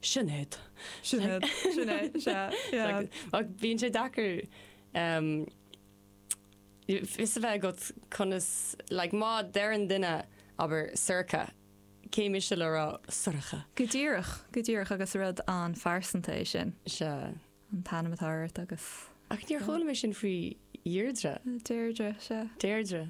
Sinéad. Sinéad. Sinéad, sea, yeah. Ach bíonn sé deacair um fios a bheith agat conas, like má deireann duine, abair, Sorcha, cé mise le rá Sorcha? Go díreach, go díreach agus rud an-phearsanta é sin. Sea. An t-ainm atá ort agus. Ach níor chuala mé sin faoi Dheirdre. Deirdre, sea. Deirdre.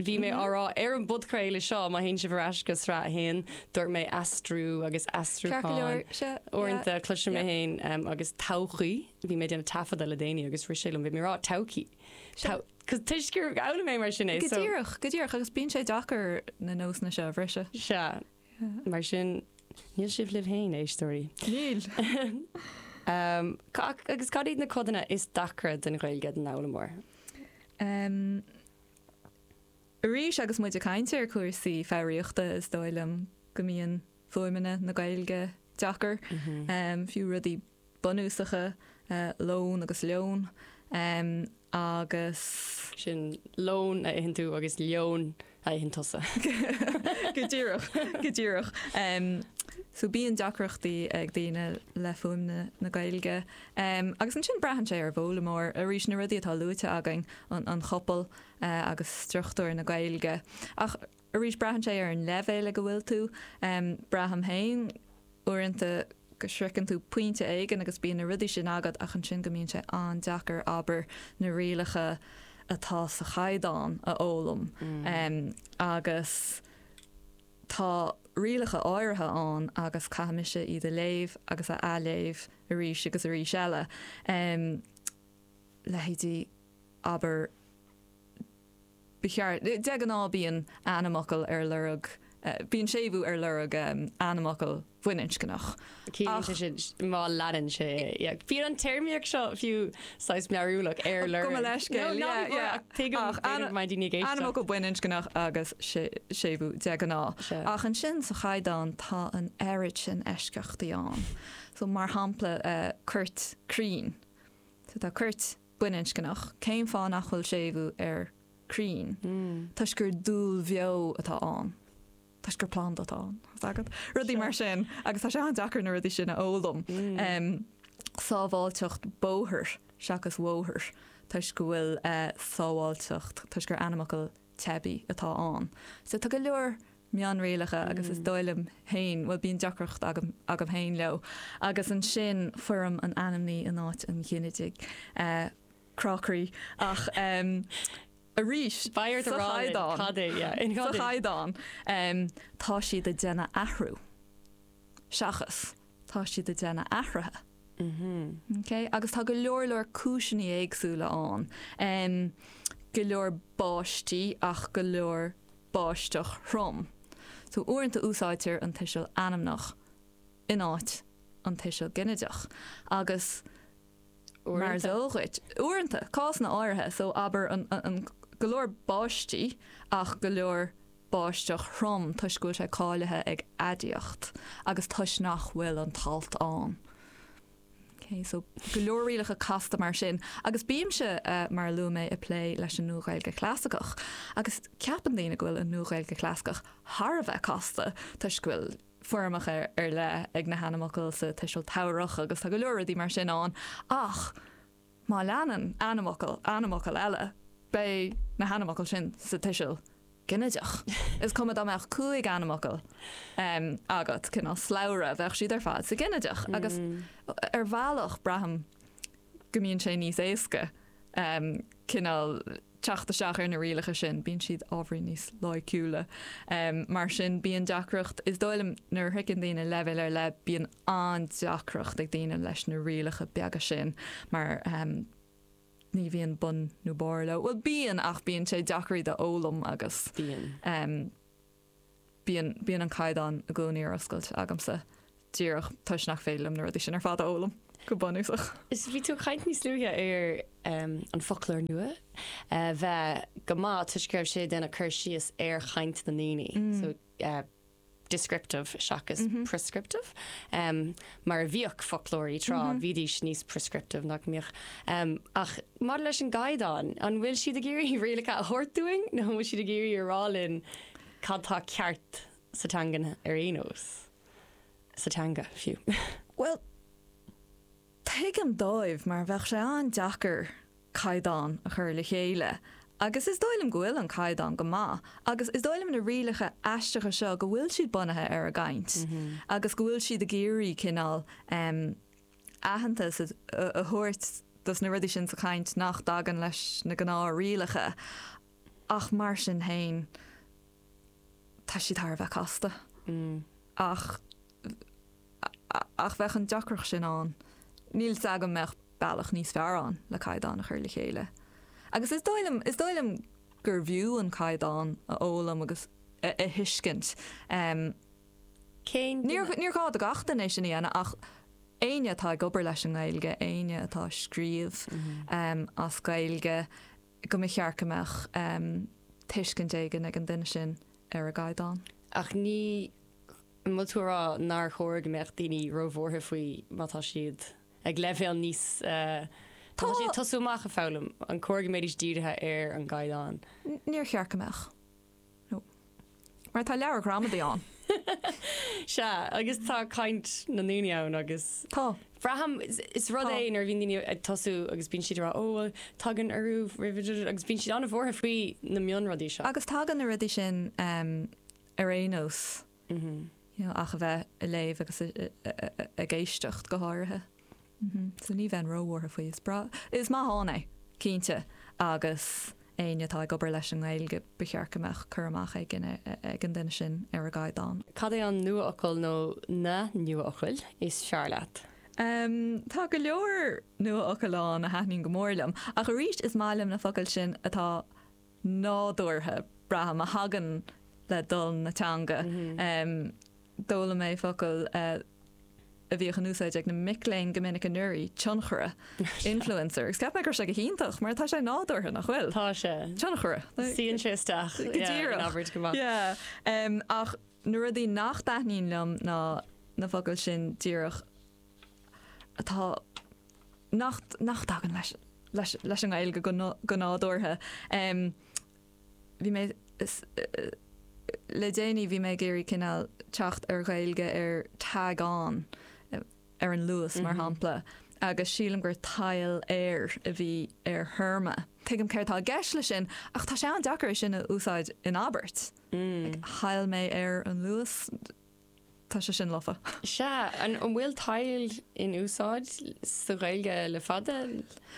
Bhí mé á rá ar an bpodchraoladh seo, má théann sibh ar ais go Sraith 1, dúirt mé aistriú agus aistriúchán uaireanta. Cloisim mé féin agus todhchaí, bhí mé ag déanamh taifeadta le déanaí agus rith sé liom, bhí mé ag rá todhchaí, cos toisc gur fhoghlaim mé mar sin é, so. Go díreach, go díreach, agus bíonn sé deacair na nósanna seo a bhriseadh. Sea, mar sin, níl sibh libh féin, éisteoirí. Níl! Agus cad iad na codanna is deacra den Ghaeilge don fhoghlaimeoir? Arís, agus muid ag caint ar chúrsaí foghraíochta, is dóigh liom go mbíonn fuaimeanna na Gaeilge deacair, fiú rudaí bunúsacha, lón agus leon agus. Sin lón a itheann tú agus leon a itheann tusa. Go díreach, go díreach. So bíonn deacrachtaí ag daoine le fuaimeanna na Gaeilge. Em, agus ansin braitheann sé ar an bhfoghlaimeoir, arís, na rudaí atá luaite againn, an, an chopail, eh, agus struchtúr na Gaeilge. Ach, arís, braitheann sé ar an leibhéal ag a bhfuil tú. Em, braithim féin, uaireanta, go sroicheann tú pointe éigin agus bíonn na rudaí sin agat ach ansin go mbíonn sé an-deacair, abair, na rialacha atá sa chaighdeán a fhoghlaim. Em, agus. Tá rialacha áirithe ann agus caithfidh mise iad a léamh agus a athléamh arís agus arís eile. Leithéidí, abair, Ba cheart. De ghnáth bíonn ainmfhocal ar lorg, bíonn séimhiú ar lorg ainmfhocail. bhaininscneach. Ciallaíonn sé Ach. sin, má leanann sé é. Bíonn an téarmaíocht seo fiú saghas mearúlach, ar lorg. Gabh mo leithscéal, No, ná yeah, bí buartha, yeah. ach tuigim, Ach, tuigim ainm- go mbeidh daoine ag éisteacht. Ainmfhocal baininscneach agus sé- séimhiú de ghnáth. Sea. Ach ansin sa chaighdeán tá an oiread sin eisceachtaí ann. So mar shampla eh, coirt crainn. So tá coirt baininscneach, cén fáth nach bhfuil séimhiú ar crainn? Toisc gur dúil bheo atá ann. toisc gur planda atá ann, tá a fhios agat. Rudaí mar sin. Agus tá sé an-deacair na rudaí sin a fhoghlaim. Sábháilteacht bóthair seachas bhóthair toisc go bhfuil sábháilteacht toisc gur ainmfhocal teibí atá ann. So tá go leor mionrialacha agus is dóigh liom féin, bhuel bíonn deacracht agam féin leo. Agus ansin foirm an ainmní in áit an ghinidigh. Crá croí. Ach. arís. B'fhearr do rá linn cad é. Sa chaighdeán, Tá siad ag déanamh athrú seachas, Tá siad ag déanamh athruithe. Okay? Agus tá go leor leor cúiseanna éagsúla ann. Um, go leor báistí ach go leor báisteach throm. So uaireanta úsáidtear an tuiseal ainmneach in áit an tuiseal ginideach. Agus Mar is eol dhuit, uaireanta, cásanna áirithe, so abair an, an, an, go leor báistí ach go leor báisteach throm toisc go bhfuil sé cáilithe ag aidiacht agus toisc nach bhfuil an t-alt ann. Ok, so go leor rialacha casta mar sin agus bímse, eh, mar a luaigh mé, ag plé leis an Nua-Ghaeilge Chlasaiceach agus ceapann daoine go bhfuil an Nua-Ghaeilge Chlasaiceach thar a bheith casta toisc go bhfuil, foirmeacha ar leith ag na hainmfhocail sa tuiseal tabharthach agus tá go leor rudaí mar sin ann ach má leanann ainmfhocal ainmfhocal eile, beidh na hainmfhocail sin sa tuiseal ginideach. Is cuma dá mbeadh cúig ainmfhocal agat, cineál slabhra, bheadh siad ar fad sa ghinideach agus ar bhealach braithim go mbíonn sé níos éasca cineál teacht isteach ar na rialacha sin, bíonn siad ábhairín níos loighciúla. Mar sin bíonn deacracht, is dóigh liom, nuair a shroicheann daoine leibhéal ar leith, bíonn an-deacracht ag daoine leis na rialacha beaga sin mar ní bhíonn bun nó barr leo. Bhuel bíonn ach bíonn sé deacair iad a fhoghlaim agus bíonn. bíonn, bíonn an caighdeán i gcónaí ar oscailt agamsa díreach toisc nach féidir liom na rudaí sin ar fad a fhoghlaim go bunúsach. Is bhí tú ag caint níos luaithe ar em, an foclóir nua a bheith go maith toisc go raibh sé ag déanamh cur síos ar chaint na ndaoine so eh, descriptive seachas prescriptive. Em, mar a bhíodh foclóirí tráth bhídís níos prescriptive nach mbíodh. Em, ach Maidir leis an gCaighdeán, an bhfuil siad ag iarraidh rialacha a thabhairt dúinn nó an bhfuil siad ag iarraidh a rá linn cad tá ceart sa teangain ar aon nós? Sa teanga, fiú. Bhuel, tuigim dóibh mar bheadh sé an-deacair caighdeán a chur le chéile agus is dóigh liom go bhfuil an caighdeán go maith agus is dóigh liom na rialacha aisteacha seo go bhfuil siad bunaithe ar an gcaint agus go bhfuil siad ag iarraidh cineál aitheantas a thabhairt dos na rudaí sin sa chaint nach dtagann leis na gnáthrialacha ach mar sin féin tá siad thar a bheith casta ach ach bheadh an deacracht sin ann. Níl 's agam an mbeadh bealach níos fearr ann le caighdeán a chur le chéile. Agus is dóigh liom is dóigh liom gurbh fhiú an caighdeán a fhoghlaim agus a thuiscint. Cén duine? Níor ghá do gach duine é sin a dhéanamh ach éinne atá ag obair leis an nGaeilge, éinne atá ag scríobh as Gaeilge, go mba cheart go mbeadh tuiscint éigin ag an duine sin ar an gcaighdeán. Ach ní, an bhfuil tú ag rá nár chóir go mbeadh daoine ró-bhuartha faoi má tá siad ag leibhéal níos, má tá siad ag tosú amach ag foghlaim, an chóir go mbeidís dírithe ar an gcaighdeán? Níor cheart go mbeadh. No. Mar tá leabhar gramadaí ann. Sea, agus tá caint na ndaoine ann agus. Tá. Braithim, is rud é nuair a bhíonn daoine ag tosú agus bíonn siad ag rá, 'Ó bhuel, tagann urú roimhe' agus bíonn siad an-bhuartha faoi na mionrudaí seo. Agus tagann na rudaí sin ar aon nós. ach a bheith a léamh agus ag éisteacht go háirithe. So ní bheinn róbhuartha faoi. Is breá, is maith ann é, cinnte, agus éinne atá ag obair leis an nGaeilge ba cheart go mbeadh cur amach éigin ag an duine sin ar an gcaighdeán. Cad é an nuafhocal nó na nuafhocail is fearr leat? Tá go leor nuafhocal ann a thaitníonn go mór liom, ach arís is maith liom na focail sin atá. nádúrtha, braithim, a thagann le dul na teanga. D'fhoghlaim mé focal a bhíodh in úsáid ag na mic léinn go minic anuraidh, tionchara, influencer, agus cheap mé go raibh sé go hiontach mar tá sé nádúrtha, nach bhfuil? Tá sé. Tionchara. Suíonn sé isteach in abairt go maith. Ach na rudaí nach dtaitníonn liom ná na focail sin díreach. atá nach dtagann leis an nGaeilge go nádúrtha. Bhí mé le déanaí bhí mé ag iarraidh cineál teacht ar Ghaeilge ar Tag On ar an Luas mar shampla agus sílim gur Tadhaill Air a bhí ar téarma. Tuigim céard atá i gceist leis sin ach tá sé an-deacair é sin a úsáid in abairt. Thadhaill mé ar an Luas Tá sé sin lofa. Sea, an bhfuil tadhaill in úsáid sa Ghaeilge le fada?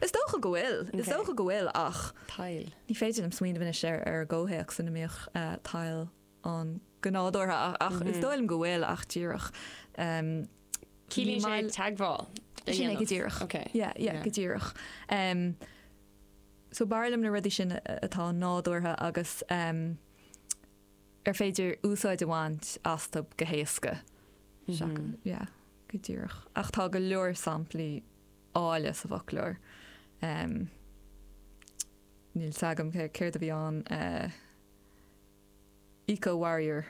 Is dócha go bhfuil, is dócha go bhfuil ach. Tadhaill. Ní féidir liom smaoineamh anois ar ar an gcomhthéacs ina mbíodh tadhaill ann go nádúrtha ach is dóigh liom go bhfuil ach díreach Ciallaíonn sé teagmháil le dhéanamh. Sin é go díreach. Ok. Yeah, yeah, go díreach. Em, so b'fhearr liom na rudaí sin atá nádúrtha agus em, ar féidir úsáid a bhaint astu go héasca, seachas, yeah, go díreach, ach tá go leor samplaí áille sa bhfoclóir. Níl fhios agam céard a bhí ann, eco-warrior,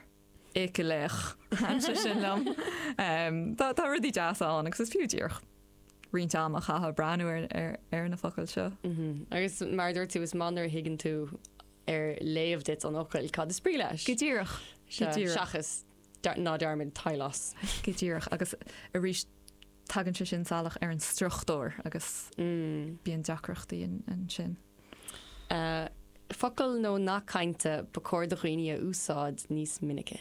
éicealaoch, thaitn sé sin liom. Tá rudaí deasa ann agus is fiú díreach roinnt ama a chaitheamh ag breathnú ar na focail seo. Agus mar a dúirt tú, is maith nuair a thuigeann tú ar léamh duit an fhocail, cad is brí leis. Go díreach. Go díreach. seachas ná dearmad teaghlás. Go díreach. Agus arís tagann sé sin salach ar an struchtúr agus bíonn deacrachtaí ansin. Focail nó nath cainte ba chóir do dhaoine a úsáid níos minice.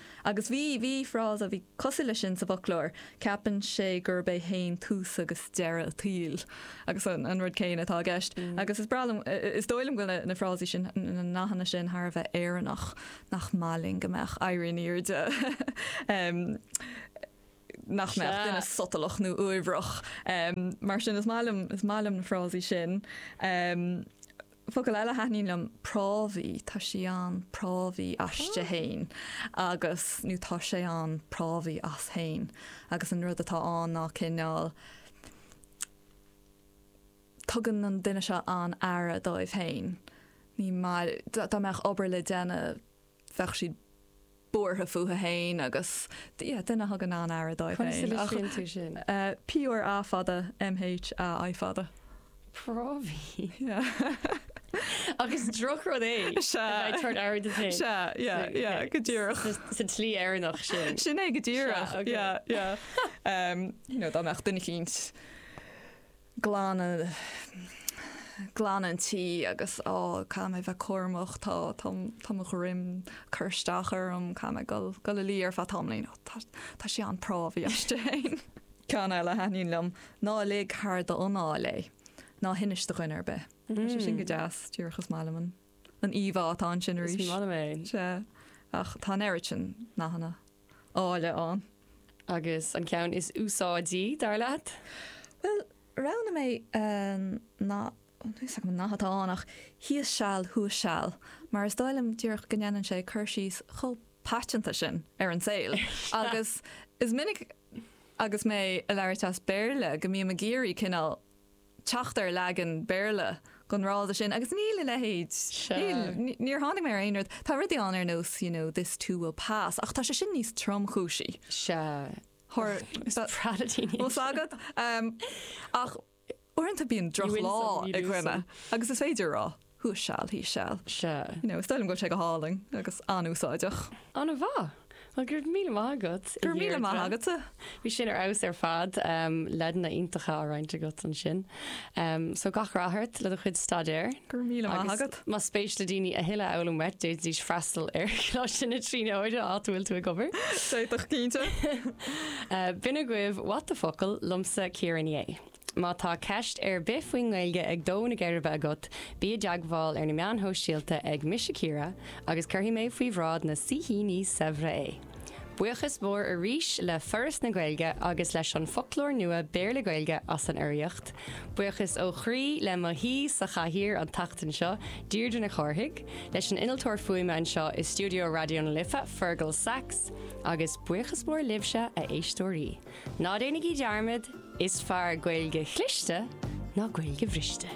Agus bhí, bhí frása a bhí cosúil leis sin sa bhfoclóir, ceapann sé gurb é féin tús agus deireadh an tsaoil, agus an, an rud céanna atá i gceist. Agus is breá liom, is dóigh liom go bhfuil na frásaí sin, na nathanna sin thar a bheith Éireannach, nach maith linn go mbeadh, éirí in airde, nach mbeadh duine sotalach nó uaibhreach. Mar sin is maith liom, is maith liom na frásaí sin. Focal eile a thaitníonn liom, prámhaí, tá sí an-phrámhaí aisti fhéin agus, nó tá sé an-phrámhaí as fhéin agus an rud atá ann ná cineál tugann an duine seo an-aire dóibh fhéin, ní maith, dá mbeadh obair le déanamh, bheadh siad buartha fúthu féin agus yeah duine a thugann an-aire dóibh féin. Conas a litríonn tú sin? PRA fada, MHAI fada. Prámhaí. Yeah. Agus drochrud é a bheith ag tabhairt aire duit féin. Sea, yeah, yeah, go díreach. Sa tslí Éireannach sin. Sin é, go díreach. Sea, ok. Yeah, yeah. You know, dá mbeadh duine eicínt. glanadh, glanadh an tí agus á, caithfidh mé bheith cúramach, tá, tá, tá mo dhroim cur isteach orm, caithfidh mé dul, dul a luí ar feadh tamaillín, ó tá, tá sé an-phrámhaí as féin. Ceann eile a thaitníonn liom, ná lig thar d'anáil é, ná hinis do dhuine ar bith. Tá sé sin go deas, díreach is maith liom an. an íomhá atá ansin arís. Is maith liom é. Sea. Ach tá an oiread sin nathanna áille ann. Agus an ceann is úsáidí, dar leat? Bhuel, roghnaigh mé an nath, níl fhios agam an nath atá ann ach thíos seal, thuas seal, mar is dóigh liom díreach go ndéanann sé cur síos chomh paiteanta sin ar an saol. Agus is minic agus mé ag labhairt as Béarla go mbím ag iarraidh cineál teacht ar leagan Béarla den fhrása sin agus níl a leithéid. Níl, níor tháinig mé ar aon rud. Tá rudaí ann ar nós, you know, this too will pass ach tá sé sin níos tromchúisí. Sea. Thoir, is pradatíní iad. Bhfuil a fhios agat? Ach uaireanta bíonn drochlá ag duine agus is féidir a rá. Thíos seal, thuas seal. Sea. You know, is dóigh liom go bhfuil sé go hálainn agus an-úsáideach. Ana mhaith! Well, go raibh míle maith agat, a Dheirdre. Go raibh míle maith agatsa. Bhí sin ar fheabhas ar fad. Em, leideanna iontacha á roinnt agat ansin. Em, so gach rath ort le do chuid staidéir. Go raibh míle maith agat. Agus más spéis le daoine a thuilleadh a fhoghlaim uait, d'fhéadfaidís freastal ar Choláiste na Tríonóide áit a bhfuil tú ag obair. D'fhéadfadh, cinnte. Eh, b'in agaibh What the Focal liomsa Ciara Ní É. Má tá ceist ar bith faoin nGaeilge ag dó na geirbe agat, bí i dteagmháil ar na meáin shóisialta ag Mise Ciara agus cuirfidh mé faoi bhráid na saoithíní saibhre é. Buíochas mór arís le Foras na Gaeilge agus leis an Foclóir Nua Béarla-Gaeilge as an urraíocht. Buíochas ó chroí le m'aoi sa chathaoir an tseachtain seo, Deirdre Nic Chárthaigh, leis an innealtóir fuaime anseo i stiúideo Raidió na Life, Fergal Sachs, agus buíochas mór libhse, a éisteoirí. Ná déanaigí dearmad, is fearr Gaeilge chliste ná Gaeilge bhriste.